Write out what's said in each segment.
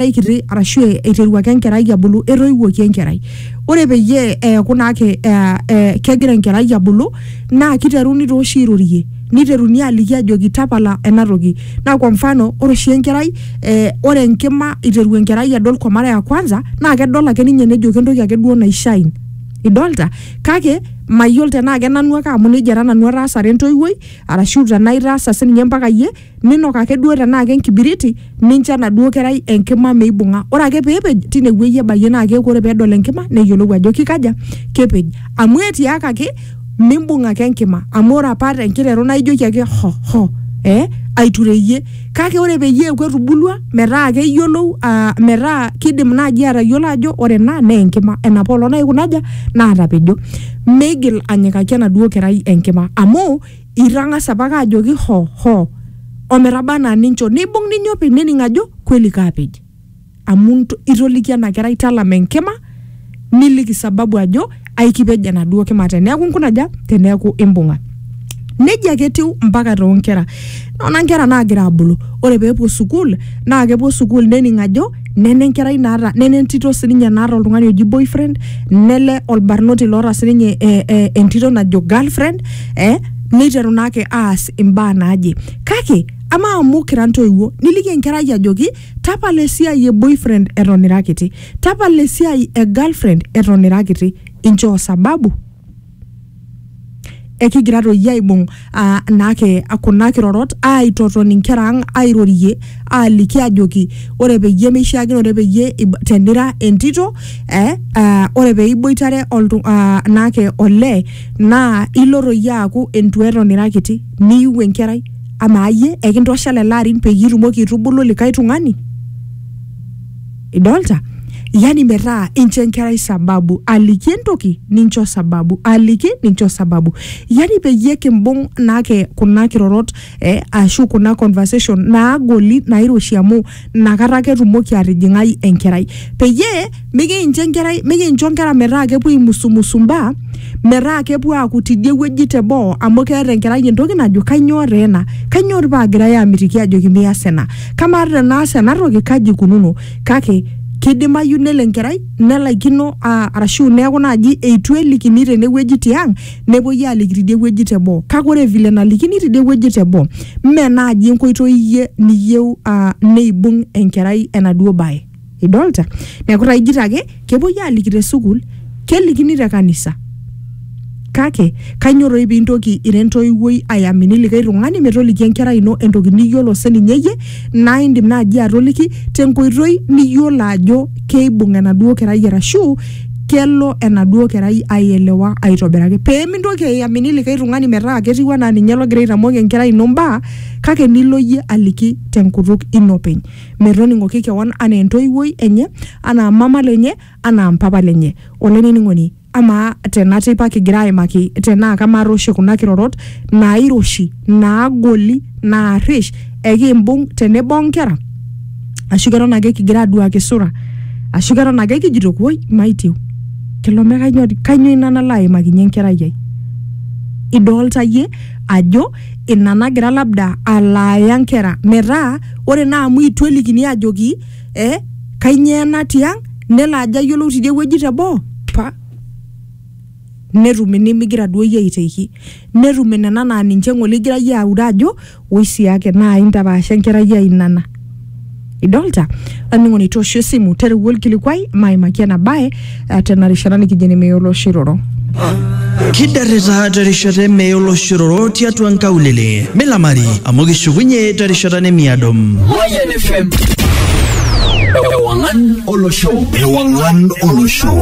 enkerai kiti arashu e- eiteru ake enkerai abulu etoiwuoki enkerai ore peyie eeku naa ke- eh, eh, kegira enkerai abulu naa kiteruni tooshi airorie niteruni aliki ajoki tapala ena toki naa kwa mfano ore oshi enkerai eh, ore enkima iteru enkerai adol kwa mara ya kwanza naa kedol ake ninye nejo kentoki ake duo naishine idolta kake mayiolo tenaa kenanu ake amu nejia taa nanu ataasare entoiwuoi arashu tenaa itaasa sininye mpaka iyie ninok ake duo tenaa ke enkibiriti nincho enaduo kerai enkima meibung'a ore ake peepej tine wueji ebayie naa keeku ore peedol enkima neyiolou ajo kikaja kepej amu etiakaki mimbung ake enkima amu ore apa tenkiteru naa ijoki ake ho ho eh aitureyie kake ore peyie eeku etubulua metaa keyiolou uh, metaa kidim naaji atayiolo ajo ore ena naa enkima enapa olong naikuna aja naatapejo meigil anyikaki enaduo kerai enkima amu itang'asa apake ajoki ho ho ometaba anaa nincho neibung ninye openy nening ajo kweli kaapej amu nto- itoliki ena kerai talama enkima niliki sababu ajo aikipej enaduo kima teneeku inkunaja teneeku imbung'a nejia ake etiu mpaka toonkera nona nkera naagira abulu ore peepuo sukuul naa kepuo sukuul nening ajo nene enkerai naata nene entito sininye naata oltung'ani oji boyfriend nele olbarnoti loota sininye eh, eh, entito najo girlfriend eh, neiteru naake aas imbaa naaje kake ama amu kira ntoiwuo niliki enkerai ajoki tapala esiai e boyfriend eton ira kiti tapala esiai e girlfriend eton ira kiti inchoo sababu ekigira toi aibung uh, naake kuna kirorot aitoton inkera ang airorie aliki ajoki ore peyie meishiakino ore peyie tenira entito eh, uh, ore peiboitare oltu uh, naake olee naa ilo toi aaku entueton ira kiti niiu enkerai amaa iyie ekintosha lelo arin peyie itumoki aitubulu likae tung'ani idolta yani metaa incho enkerai sababu aliki entoki nincho sababu aliki nincho sababu yani peyie kimbung naake kuna kirorot eh, ashu kuna conversation naagoli nairoshi amu nakata ake etumoki atijing'ai enkerai peyie mikincho enkerai mikincho nkera metaa kepuo aimusumusu mbaa metaa kepuo aaku tidie wueji teboo amu keeta enkerai entoki najo kainyoo taa ena kainyoo tii paagirae aamitiki aajoki mias ena kamaa tenaas ena toki kaji ikununo kake kidimayu nelo enkerai nelaikino aa, arashu neeku naaji eitu elikini tenewueji tiang nepuoi aaliki tidie wueji teboo kake ore vile nalikini tidie wueji teboo mme naaji enkoitoi iyie niyieu aa neibung enkerai enaduo baye. idolta neeku taa ijito ake kepuoi aliki te sukuul kelikini te kanisa kake kanyoo toi pintoki ira entoiwuoi ayamini likae tung'ani metoliki enkerai ino entoki niyiolo sininye iyie naa indim naaji atoliki tenkoitoi niyiolo ajo keibung enaduo kerai arashu kelo enaduo kerai aielewa aitobiraki pemintoki ayamini likae tung'ani metaa ketiu anaa ninye logira aitamok enkerai ino imbaa kake nilo iyie aliki tenkutuk ino openy metoning'oki kewan anaa entoiwuoi enye, anaa mama lenye, anaa mpapa lenye. Olainining'oni, amaa tena teipa kigira aimaki tenaa kamaata oshi kuna kirorot naairoshi, naagoli, naarrish, ekimbung tenebo onkera? Ashu keton ake kigira aduaki sura? Ashu keton ake kijito woi maitieu? Kelo me kainyoo ina nalo aimakinye enkerai ai? Idolta iyie ajo ina nagira labda alaaya nkera metaa ore naa amu itu elikini ajoki eh, kainyoo ena tiang nelo ajo ayiolou tidie wueji teboo pa netum inimigira duo iyie aiteki netum inena naa ninche ng'ole igira iyie aure ajo oi siake naa intapaasha enkerai ai nana idolta olainining'oni toosho esimu tereu olkilikuai maimaki ena bae eh, tena rishata nikijo ene meya oloshiroro Kidarrita terishata emeya oloshororo tiatua nkaulele. Milamari amu kishukunye terishata nemiado. Mayan FM. Ewangan Olosho. Ewangan Olosho.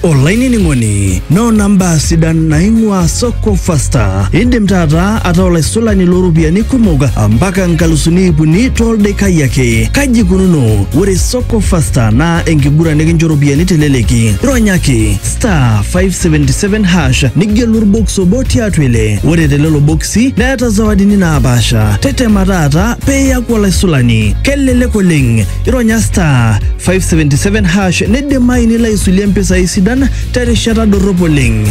olainining'oni noona mbaa sidan naing'ua soko fasta indim taata ataa olaisulani looropiyiani kumok mpaka nkalusuni iip uni tooldaikai ake kaji ikununo ore soko fasta naa enkiguran nikincho ropiyiani teleleki ronyaki star 577 hash nigelu orbokis obo tiatua ile ore telelo bokisi neeta zawadini naapaasha tetema taata pee iyaku olaisulani kelelek oleng ironya star 577 hash neidimayu nilo aisulie mpisai sidan terishata dorrop oleng.